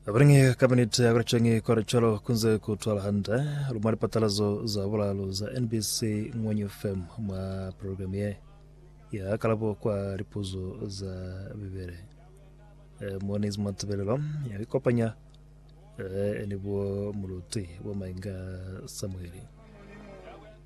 Abalingi kabinete ya kulichengi kwa lichalo kunze kutwala hande lumwa lipatalazo za bulalu za NBC Ngwenyu FM mwa programu ye ya kalabo kwa lipuzo za Bibele. E, moni zimwa tebelelo ya ikopanya e, ni bo muluti wa mainga Samueli.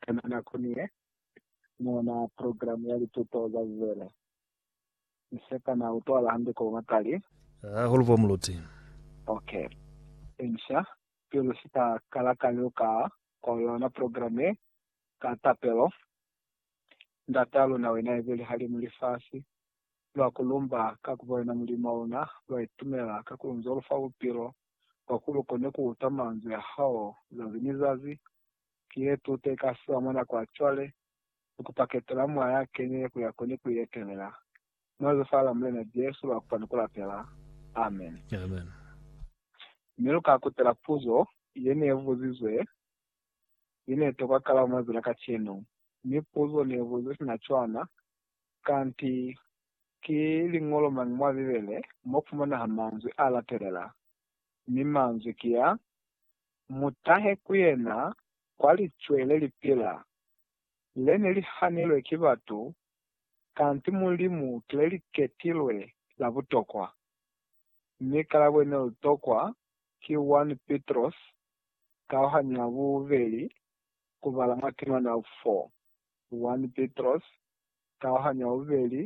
Kana na koni ye mona program ya lituto za Bibele? Mi se kana utwala hande ko matali? Hahulu bo muluti. Ok. Inca, pilu si ka kala ka liuka ko yona program ye, ka tapelo, Ndata luna wena ibili halimu lifasi, lwa ku lumba ka ku bona Mulimu wa una, lwa itumela ka ku lunzo lufa bupilo kwa ku lu kone ku uta manzwi a hao zazi ni zazi. Ki ye tuto ye ka fiwa mwa nako ya cwale, ni ku paketela mwa ya kenile ku ya ko ni ku ietelela. Mwa Lifa la Mulena Jesu lwa kupa ni ku lapela. Amen. Amen. Mi lu ka kutela puzo ye ne buzizwe ye ne tokwa kalabo mwa zila kacenu. Mi puzo ne buzizwe sina cwana, Kanti Ki liñolo mañi mwa Bibele mo fumanaha manzwi a latelela, mi manzwi ki a, Mu tahe ku yena kwa licwe le li pila, le ne li hanilwe ki batu, kanti Mulimu ki le li ketilwe la butokwa? Mi kalabo ne li tokwa ki 1 Pitrosi kauhanyo ya bubeli ku bala mwa temana 4, 1 Pitrosi kauhanyo ya bubeli